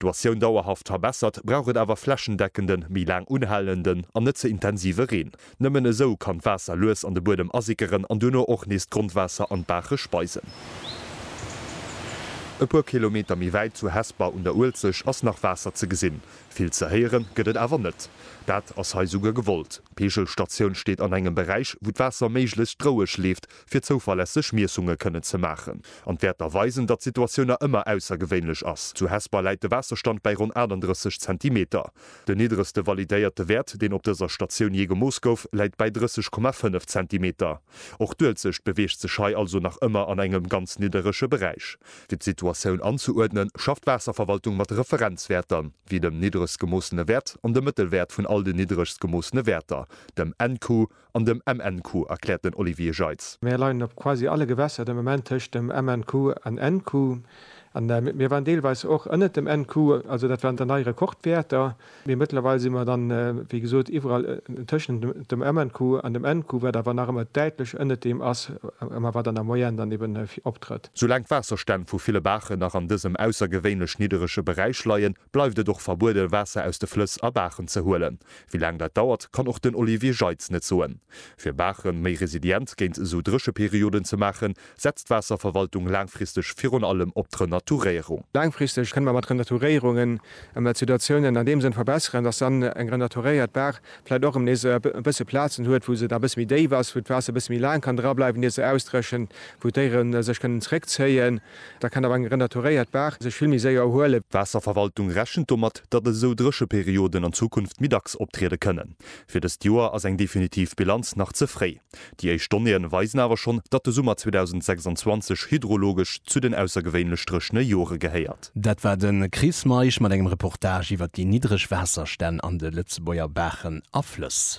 D'Situatioun dauerhaft verbessert, brauch et awer flächendeckenden, méi laang unhalenden an net ze intensive Reen. Nëmmen esou kann d'Waasser lues an de Buedem asickeren an duerno och nees d'Grondwaasser an d'Baache speisen. E puer Kilometer méi wäit, zu Hesper un der Uelzecht, ass nach Waasser ze gesinn. Vill ze héiere gëtt et awer net. Dat ass hei souguer gewollt. D'Peegelstatioun steet an engem Beräich, wou d'Waasser méiglechst roueg leeft, fir zouverlässeg Miessunge kënne ze maachen an d'Wäerter weisen, datt d'Situatioun nach ëmmer aussergewéinlech ass. Zu Hesper läit de Waasserstand bäi ronn 38 Zentimeter. Den niddregste validéierte Wäert, deen op dëser Statioun jee gemooss gouf, läit bäi 30,5 Zentimeter. Och d'Uelzecht beweegt sech hei also nach ëmmer an engem ganz nidderege Beräich. Fir d'Situatioun anzeuerdnen, schafft d'Waasserverwaltung mat Referenzwäerter, wéi dem niddregst gemoossene Wäert an dem Mëttelwäert vun all den niddregst gemoossene Wäerter, dem NQ, An dem MNQ, erkläert den Olivier Jeitz. Mir leien op quasi alle Gewässer de Moment tëscht dem MNQ an NQ. An mir waren deelweis och ënnert dem NQ, also dat waren dann nei Rekordwäerter. Mee mëttlerweil si mer dann, wéi gesot, iwwerall tëschent dem MNQ an dem NQ, wat awer nach ëmmer däitlech ënnert deem ass, ëmmer wat an der Moyenne dann eeben optrëtt. Soulaang d'Waasserstänn vu ville Baachen nach an dësem aussergewéinlech nidderege Beräich leien, bleift et och verbuede Waasser aus de Flëss a Baachen ze huelen. Wéi laang dat dauert, kann och den Olivier Jeitz net soen. Fir Baache méi resilient géint esou Drécheperioden ze maachen, setzt d'Waasserverwaltung laangfristeg virun allem op d'Renaturéierung. Laangfristeg kënne mer mat Renaturéierungen emmer d'Situatiounen an deem Sënn verbesseren, datt dann eng renaturéiert Baach vläicht och erëm nees e bësse Plazen huet, wou se da e bësse méi déif ass, wou d'Waasser e bësse méi laang kann drableiwen, ier se ausdréchent, wou d'Déiere sech kënnen zréckzéien. Da kann awer eng renaturéiert Baach sech vill méi séier erhuelen. D'Waasserverwaltung rechent domat, datt esou Drécheperioden an Zukunft méi dacks optriede kënnen. Fir dëst Joer ass eng definitiv Bilanz nach ze fréi. Déi éischt Donnéeë weisen awer schonn, datt de Summer 2026 hydrologesch zu den aussergewéinlech dréchene Jore gehéiert. Dat war de Chris Meisch mat engem Reportage iwwert déi niddreg Waasserstänn an de Lëtzebuerger Baachen a Flëss.